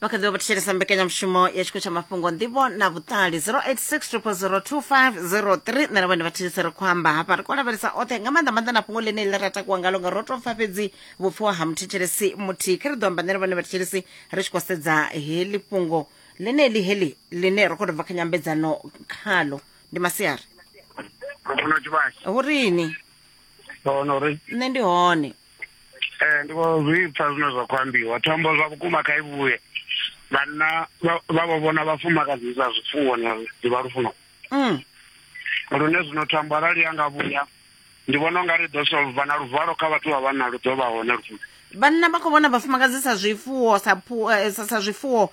vha kha ḓivha vha thetshelesa mbekanyamushumo ya tshiko tsha mafhungo nḓivho na vhuṱali 08600023 nṋe na vhone vha thetshelesa ri khou amba hafha ri khou lavhelesa oṱhe nga maanḓa maanḓa na fhungo ḽine ḽi ra takuwa ngalo nga ro tou pfa fhedzi vhupfiwa ha muthetshelesi muthihi kha ri ḓo amba nṋe na vhone vha thetshelesi ri tshi khou sedza heḽi fhungo ḽeneḽi heḽi ḽine ro khou tou bva kha nyambedzano khalo ndi masiari Mafuna tshivhasi. hu rini Hono ri nṋe ndi hone ee ndi khou zwi pfa zwine zwa khou ambiwa thombo zwa vhukuma kha i vhuye vhanna vha vho vhona vhafumakadzi sa zwifuwo na ḓivha lufuno mm. lune zwino thambo arali ya nga vhuya ndi vhona unga ri ḓo solva na luvalo kha vhathu vha vhanna lu ḓo vha hone lufuno vhanna vha khou vhona vhafumakadzi sa zwifuwo sa eh, sa zwifuwo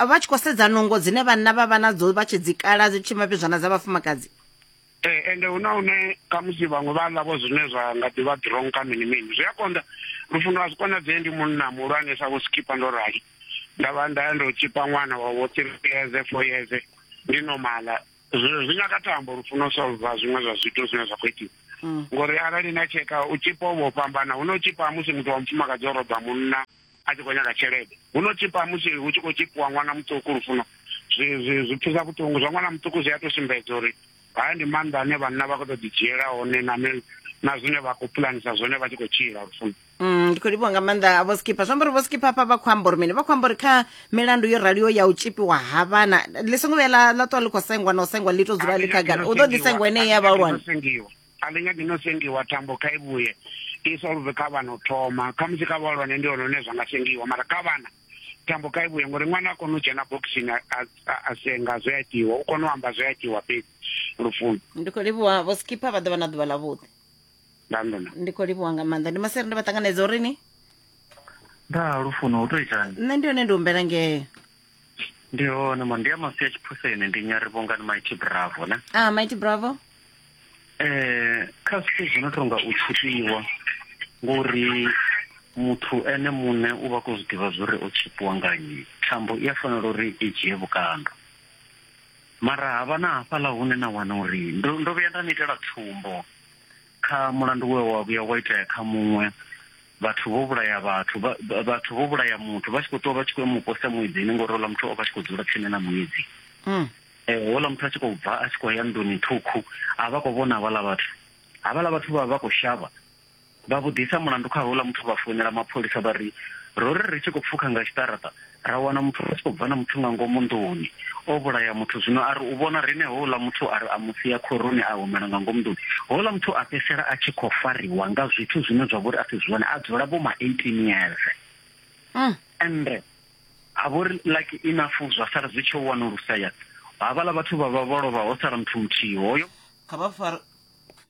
vha tshi khou sedza nungo dzine vhanna vha vha nadzo vha tshi dzikala dzi tshimapizwana dza vhafumakadzi Ee, ende hu na hune khamusi vhaṅwe vha ḽa vho zwine zwa nga ḓivha drong kha mini mini zwi a konḓa lufuno a zwi konadzee ndi munna muhulwane sa vho skipa ndo rali nda vha nda ya ndo tshipa ṅwana wa vho three years four years ndi nomala zwi nyaga thambo lufuno solva zwiṅwe zwa zwithu zwine zwa khou itiwa mm. ngori arali na tsheka u tshipa u vho fhambana hu no tshipa musi muthu wa mufumakadzi o roba munna a tshi khou nyaga tshelede huno tshipa musi hu tshi khou tshipiwa ṅwana muṱuku lufuno zwi zwi zwi pfisa vhuṱungu zwa ṅwana muṱuku zwi a to sumbedza uri haya ndi maanḓa ane vhanna vha khou tou ḓidzhiela hone na na zwine vha khou pulanisa zwone vha tshi khou tshila lufuno mm, ndi khou livhiwa nga maanḓa a vho skipha zwi amba uri vho skipha hafha vha khou amba uri mini vha khou amba uri kha milandu yo raliho ya u tshipiwa ha vhana ḽi songo vhuya ḽa ṱuwa ḽi khou sengwa na u sengwa ḽi to dzula ḽi khagala u ḓo ḓi sengwa ene ya vhahulwane a ḽi nyagi no sengiwa thambo kha i vhuye i solve kha vhana u thoma khamusi kha vhahulwane ndi hone hune zwa nga sengiwa mara kha vhana thambo kha i vhuye ngori ṅwana a kona u dzhena bokisini a senga zwe a itiwa u kona u amba zwe a itiwa fhedzi lufuno ndi khou livhuwa vho skipper vha ḓo vha na ḓuvha ḽavhuḓi ndandona ndi khou livhuwa nga maanḓa ndi masere ndi vha ṱanganedza uri ni nda lufuno u tou itani nṋe ndi hone ndi humbela ngee ndi hone mo ndi a masi a tshiphuseni ndi nyari vhongani mighty bravo ne ah mighty bravo eh kha zwithu zwi no tonga u tshipiwa ngori muthu ene muṋe u vha khou zwi ḓivha zwori o tshipiwa nga nnyi thambo i a fanela uri i dzhie vhukando mara havha na hafhaḽa hune na wana uri ndo ndo vhuya nda ni itela tsumbo Kha mulandu we wa vhuya wa itea kha muṅwe, vhathu vho vhulaya vhathu vha, vha, vhathu vho vhulaya muthu vha tshi khou ṱuwa vha tshi khou ya mu posa muedzini ngori houḽa muthu o vha tshi khou dzula tsini na muedzi. Mm. Eh, houḽa muthu a tshi khou bva a tshi khou ya nḓuni ṱhukhu a vha khou vhona havhaḽa vhathu havhaḽa vhathu vha vha khou shavha vha vhudisa mulandu kha houḽa muthu vha founela mapholisa vha ri ro ri ri tshi khou pfukha nga tshiṱaraṱa Ra wana muthu a tshi khou bva na muthu nga ngomu nḓuni, o vhulaya muthu. Zwino a ri u vhona riṋe houḽa muthu a ri a mu sia khoroni a humela nga ngomu nḓuni. Houḽa muthu a fhedzisela a tshi khou fariwa nga zwithu zwine zwa vha uri a si zwone, a dzula vho ma 18 years. Mm. Ende ha vha uri lucky enough zwa sala zwi tshi wanulusea, havhaḽa vhathu vha vha vho lovha ho sala muthu muthihi hoyo. Kha vha fare.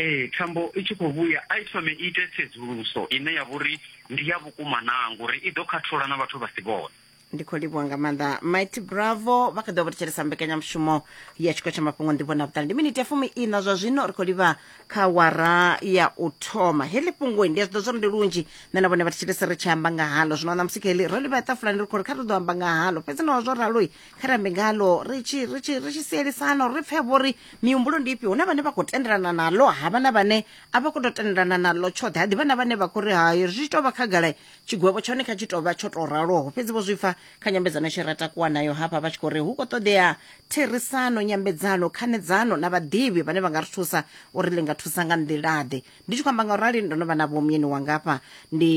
Ee, thambo i tshi khou vhuya, a i thome i ite tsedzuluso ine ya vha uri ndi ya vhukuma naa, ngori i ḓo khathola na vhathu vha si vhone. Ndi khou livhuwa nga maanḓa Mighty Bravo vha kha ḓi vha thetshelesa mbekanyamushumo ya tshiko tsha mafhungo nḓivho na vhuṱali. Ndi miniti ya fumi ina zwa zwino ri khou livha kha wara ya u thoma. Heḽi fhungo ndi a zwiḓo zwori ndi lunzhi nṋe na vhone vha thetshelesa ri tshi amba nga halo. Zwino ṋamusi kha heḽi ro livha tafulani ri khou ri kha ri ḓo amba nga halo. Fhedzi naho zwo ralo kha rambe ngalo ri tshi ri tshi ri tshi sielisana uri ri pfhe vho ri mihumbulo ndi ifhio huna vhane vha khou tendelana naḽo ha vha na vhane a vha khou tou tendelana naḽo tshoṱhe ha ḓivha na vhane vha khou ri hayo zwi tshi tou vha khagala tshigwevho tshone kha tshi tou vha tsho tou raloho fhedzi vho zwi pfa kha nyambedzano tshi ra takuwa nayo hafha vha tshi khou ri hu khou ṱoḓea therisano nyambedzano khanedzano na vhaḓivhi vhane vha nga ri thusa uri ḽi nga thusa nga nḓilaḓe ndi tshi khou amba nga u rali ndo no vha na vhomyeni wanga afha ndi,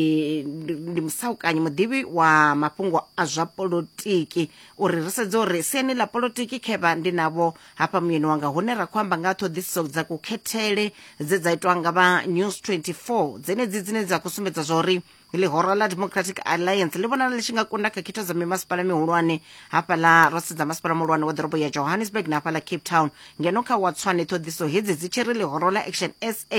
ndi, ndi musaukanyi muḓivhi wa mafhungo a zwa polotiki uri ri sedze uri siani ḽa polotiki khevha ndi navho hafha muyeni wanga hune ra khou amba nga ha ṱhoḓisiso dza kukhethele dze dza itwa nga vha news 24 dzenedzi dzine dza khou sumbedza zwa uri ḽihoro ḽa democratic alliance ḽi vhonala ḽi tshi nga kunda khetho dza mimasipala mihulwane hafhaḽa ro sedza masipala muhulwane wa ḓorobo ya johannesburg na hafhaḽa cape town ngeno kha watswane ṱhoḓiso hedzi dzi tshi ri ḽihoro ḽa action sa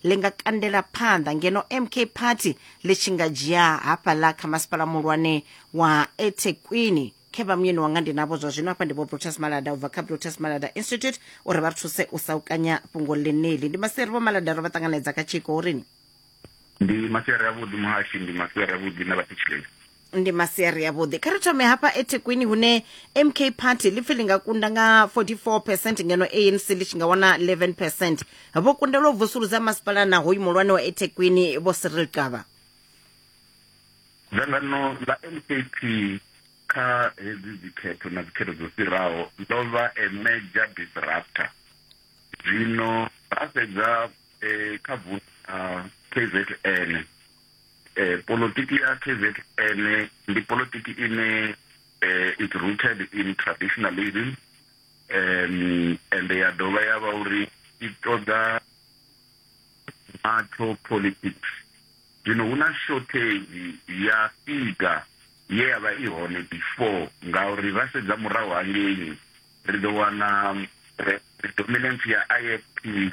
ḽi nga kandela phanḓa ngeno mk party ḽi tshi nga dzhia hafhaḽa kha masipala muhulwane wa ethekwini khe vha muyeni wanga ndi navho zwa zwino hafha ndi vho brutus malada u bva kha brutus malada institute uri vha thuse u saukanya fhungo ḽeneli ndi maseri vho malada ro vha ṱanganedza kha tshiko urini ndi masiari avhuḓi muhashi ndi masiari avhuḓi na vhathetsheleli ndi masiari avhuḓi kha ri thome hafha ethekwini hune mk party lipfi li nga kunda nga 44 percent ngeno anc ḽi tshi nga wana 11 percent vho kundelwa u vusuludza masipala na hoyu muhulwane wa ethekwini vho siril qava dzangano ḽa mkp kha hedzi dzikhetho na dzikhetho dzo fhiraho ḽo vha a major disruptor zwino ra sedza eh kha vundu la KZN eh politiki ya KZN ndi politiki ine eh is rooted in traditionalism um and ya dovha ya vha uri i ṱoḓa macho politics zwino hu na shortage ya figa ye ya vha i hone before ngauri ra sedza murahu hangeini ri ḓo wana eh, dominance ya ifp